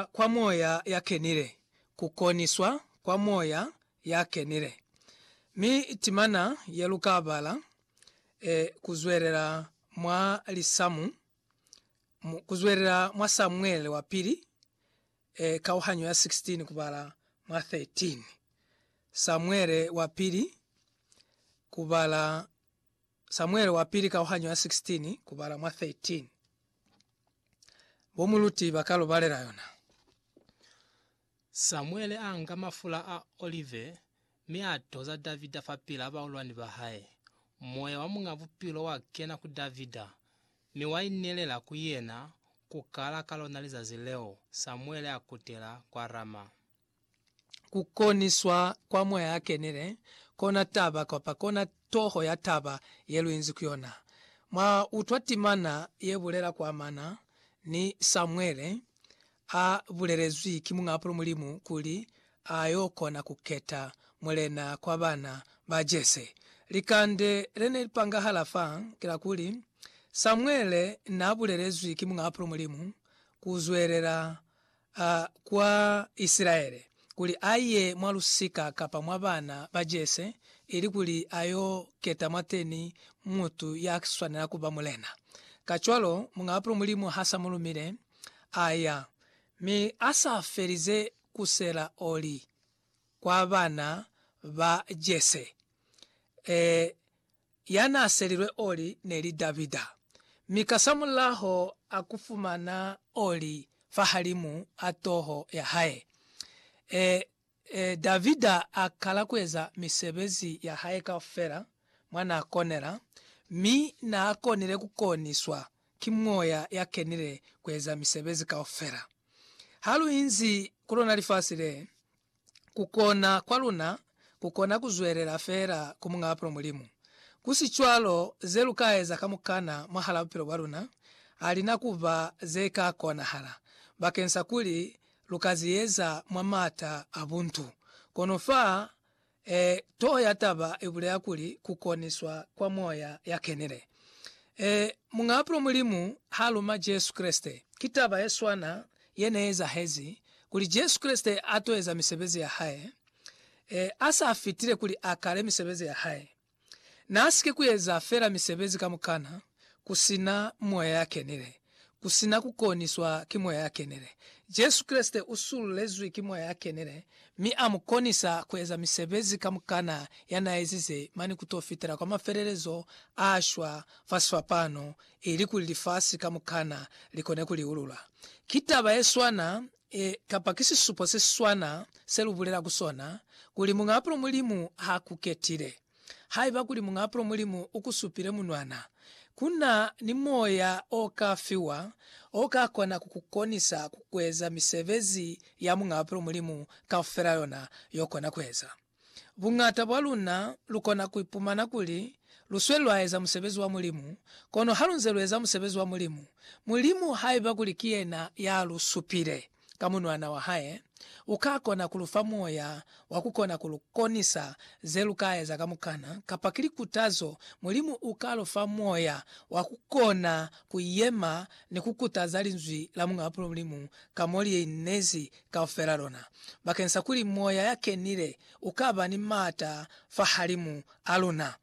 kwa Moya ya Kenile, ku koniswa kwa Moya ya Kenile. Mi timana ye lu ka bala, e, ku zwelela mwa lisamu, ku zwelela mwa Samuele wa Pili, e, kauhanyo ya 16 kubala mwa 13. Samuele wa Pili, kubala. Samuele wa Pili kauhanyo ya 16 kubala mwa 13. Bo muluti ba ka lu balela yona. Samuele a nga mafula a olive mi a toza Davida fapil'a baulwani ba hae. Moya wa Muñ'a Bupilo wa kena ku Davida, mi wa inelela ku yena ku kala ka lona lizazi leo Samuele a kutela kwa Rama. ku koniswa kwa Moya a Kenile, kona taba, kapa kona toho ya taba ye lu inzi ku yona. Mwa utwa timana ye bulela ku amana ni Samuele, a bulelezwi ki Muñaapulo Mulimu kuli a yo kona ku keta mulena kwa bana ba Jese. Likande le ne li pangahala fa ki la kuli, Samuele n'a bulelezwi ki Muñaapulo Mulimu ku zwelela a kwa Isilaele, kuli a ye mwa lusika kapa mwa bana ba Jese, ilikuli a yo keta mwateni mutu ya swanela ku ba mulena. Kacwalo, Muñ'a Bapilo Mulimu ha s'a mu lumile, a ya, mi a sa felize ku sela oli kwa bana ba Jese, ee, ya n'a selilwe oli ne li Davida, mi kasamulaho a ku fumana oli fahalimu a toho ya hae. E, e, Davida a kala ku eza misebezi ya hae kaufela mwa n'a konela, mi n'a konile ku koniswa ki Moya ya Kenile ku eza misebezi kaufela. Ha lu inzi ku lona lifasi le, kukona kwa luna kukona kuzwelela feela ku Muñ'a Bupilo Mulimu. Ku si cwalo, ze lu ka eza kamukana mwahal'a bupilo bwa luna ha li na ku ba ze ka konahala bakeng sa kuli lu ka ziyeza mwa m'ata a buntu. Kono fa e, toho ya taba i bulela kuli ku koniswa kwa Moya ya Kenile. E, Muñ'a Bupilo Mulimu ha luma Jesu Kreste. Ki taba ye swana ye ne ezahezi kuli Jesu Kreste a to eza misebezi ya hae e a sa fitile kuli a kale misebezi ya hae. N'a si ke ku eza fela misebezi kamukana ku si na Moya ya Kenile, ku si na ku koniswa ki Moya ya Kenile. Jesu Kreste u sululezwi ki Moya ya Kenile mi a mu konisa ku eza misebezi kamukana ya n'a ezize mane ku to fitela kwa mafelelezo a shwa fa sifapano ili kuli lifasi kamukana li kone ku liulula. Ki taba ye swana ye, kapa ki sisupo se si swana se lu bulela ku sona, kuli Muñaapulo Mulimu ha ku ketile. Haiba kuli Muñaapulo Mulimu u ku supile munwana, ku na ni moya o ka fiwa o ka kona ku ku konisa ku eza misebezi ya Muñaapulo Mulimu kaufela yona y'o kona ku eza. Buñata bwa luna lukona kuipumana kuli lusweli lwaeza musebezi wa Mulimu, kono halunze lueza musebezi wa Mulimu, Mulimu, haiba kuli ki yena yalusupile ka Munwana wa hae, ukakona kulufa moya wa kukona kulukonisa zelukaeza kamukana, kapa ki likutazo, Mulimu uka lufa moya wa kukona kuyema ni kukutaza Linzwi la Muñaa Mulimu ka mo liinezi kaufela lona, bakeng sa kuli Moya ya Kenile u ka ba ni m'ata fahalimu a luna.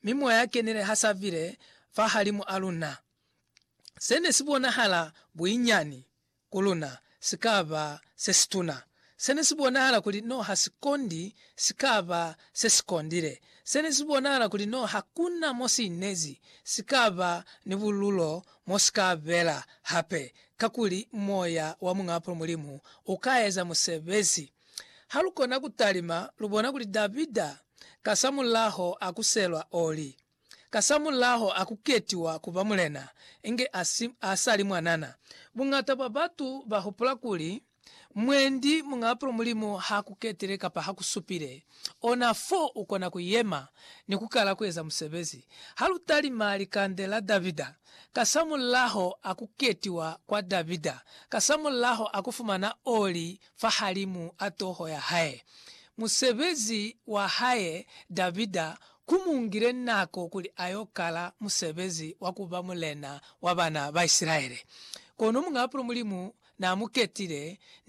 Mi Moya ya Kenile ha sa bile fahalimu a luna, se ne si bonahala buinyani ku luna si ka ba se situna. Se ne si bonahala kuli no ha si kondi si ka ba se si kondile. Se ne si bonahala kuli no ha ku na mo si inezi si ka ba ni bululo mo si ka bela hape. kakuli moya wa Muñ'apo Mulimu u ka eza musebezi. Ha lu kona ku talima, lu bona kuli Davida kasamulaho a kuselwa oli, kasamulaho a ku ketiwa ku ba mulena inge a si a sa li mwanana. Buñata bwa batu ba hupula kuli, Mwendi muñ'apulo Mulimu ha ku ketile kapa ha ku supile ona fo u kona ku yema ni ku kala ku eza musebezi. Ha lu talima likande la Davida, kasamulaho a ku ketiwa kwa Davida, kasamulaho a ku fumana oli fahalimu a toho ya hae, musebezi wa hae Davida Ku mu ngile nako kuli a yo kala musebezi wa ku ba mulena wa bana ba Isilaele. Kono muñ'a Apolo Mulimu n'a mu ketile,